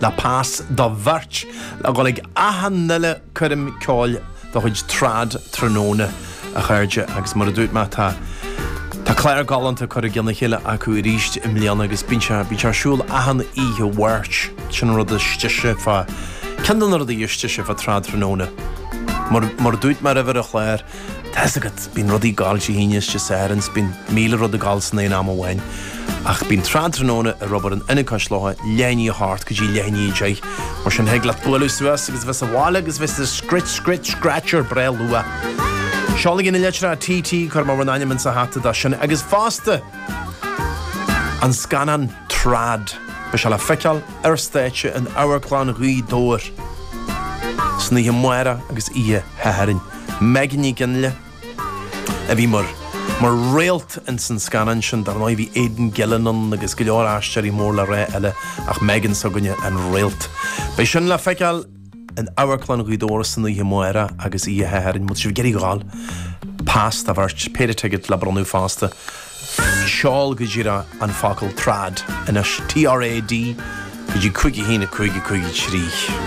Le pas do bheirt le dhul ag achan uile coirm ceoil de chuid Trad tráthnóna, a chairde, agus mar a dúirt mé, tá Tá clár galánta curtha i gceann a chéile acu arís i mbliana agus bíonn sé bíonn sé ar siúl achan oíche Mháirt. Sin an rud is deise fá ceann de na rudaí is deise fá Trad tráthnóna. Mar mar a dúirt mé roimhe ar an chlár, Tá's agat, bíonn rudaí ag gabháil Dé hAoine is Dé Sathairn is bíonn míle rud ag gabháil san aon am amháin. Ach bíonn Trad Tráthnóna ag obair in Ionad Cois Locha leath i ndiaidh a hocht go dtí leath i ndiaidh a deich. Mar sin thig leat bualadh suas agus bheith sa bhaile agus bheith sa scruit, scruit, scratcher breá luath. Seolaigí na litreacha TT cuirfidh mé bhur n-ainm insa hata dó sin agus fosta an scannán Trad. Beidh sé le feiceáil ar stáitse in Amharclann Ghaoth Dobhair san oíche amárach agus oíche Shathairn. Megan Nic Fhionnghaile a bhí mar mar réalt ins an scannán sin. Dar ndóigh, bhí Aidan Gillen ann agus go leor aisteoirí mór le rá eile ach Megan s'againne an réalt. Beidh sin le feiceáil in Amharclann Ghaoth Dobhair san oíche amárach agus oíche Shathairn. Má tá sibh ag iarraidh a ghabháil, pas do bheirt, péire ticéad le bronnadh fosta. Seol go díreach an focal trad anois, T-R-A-D, go dtí 51553.